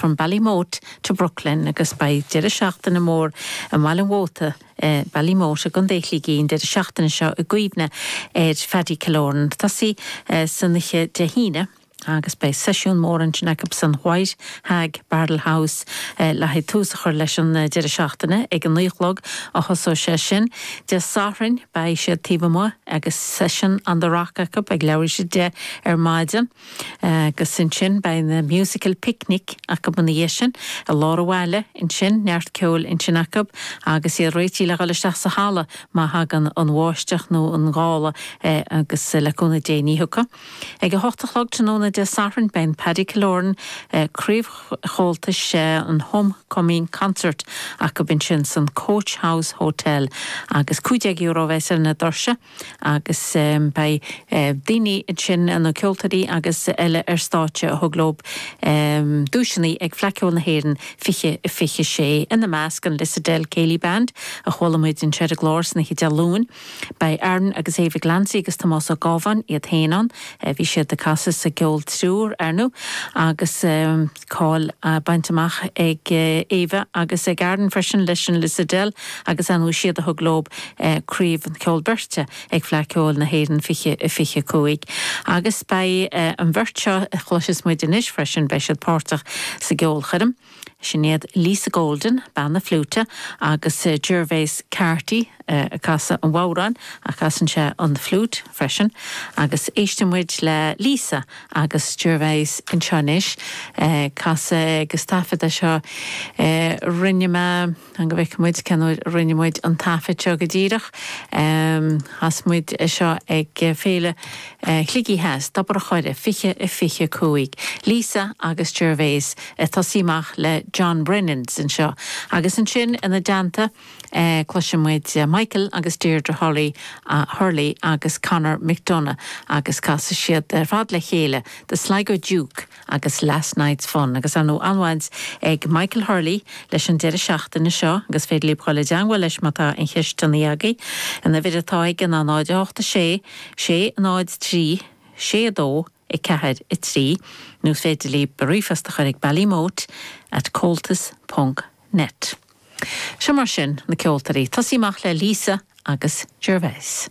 From Ballymote to Brooklyn agus beidh deireadh seachtaine mór i mBaile an Mhóta i Ballymote i gContae Shligigh an deireadh seachtaine seo i gcuimhne ar Phaddy Killoran a tosaí san oíche Dé hAoine agus beidh seisiún mór ansin acu san White Hag Barrel House le haghaidh tús a chur leis an deireadh seachtaine. Ag a naoi a chlog a thosóidh sé sin. Dé Sathairn beidh siad taobh amuigh agus session on the rock acu ag leathuair tar éis a deich ar maidin. Agus ansin beidh an Musical Picnic acu ina dhiaidh sin, i lár an bhaile, ansin neart ceoil ansin acu agus iad réití le dhul isteach sa halla má thagann an bháisteach nó an gála agus le cúnamh Dé ní thiocfaidh. Ag a hocht a chlog tráthnóna Dé Sathairn beidh an Paddy Killoran, Craobh Chomhaltas an Home Coming Concert acu ansin san Coach House Hotel agus €15 a bheas ar na doirse. Agus beidh daoine ansin, na ceoltóirí agus eile ar stáitse a thug leo duaiseanna ag Fleadh Cheoil na hÉireann 2026, ina measc an Lissadell Céilí Band, a chuala muid anseo ar an gclár san oíche Dé Luain. Beidh Aaron agus Éabha Glancy agus Tomás Ó Gábháin iad féin ann, bhí siad ag casadh sa gCeol Triúir, ar ndóigh, agus. Ceol á bhaint amach ag Éabha agus ag Aaron freisin leis an Lissadell agus ar ndóigh is iad a thug leo craobh an cheoil beirte ag Fleadh Cheoil na hÉireann 2025 agus beidh an bheirt seo a chloiseas muid anois freisin, beidh siad páirteach sa gceolchoirm. Sin iad Lisa Golden, bean na fliúite, agus Gervase Carty ag casadh an bhodhráin ach casann sé an fhliúit freisin agus éistfidh muid le Lisa Agus Gervase anseo anois, casadh agus taifeadadh é seo. Rinne mé, an go bhfeice muid cén uair a rinne muid an taifead seo go díreach, chas muid é seo ag Féile Shligigh Theas, Tobar a' Choire, 2025. Lisa agus Gervase ag tosaí amach le John Brennan's anseo agus ansin ina dteannta, Cloisfidh muid Michael agus Deirdre Hurley Hurley agus Conor McDonagh agus casfaidh siad ar fad le chéile The Sligo Duke agus Last Night's Fun agus ar ndóigh an-bhaint ag Michael Hurley leis an deireadh seachtaine seo agus is féidir libh dul i dteangmháil leis má tá aon cheisteanna agaibh, an uimhir atá aige ná 08 6 6 0 3 6 2 4, 3 nó is féidir libh ríomhphost a chur ag Ballymote at Comhaltas ponc net. Seo mar sin, na ceoltóirí, tosaí amach le Lisa agus Gervase.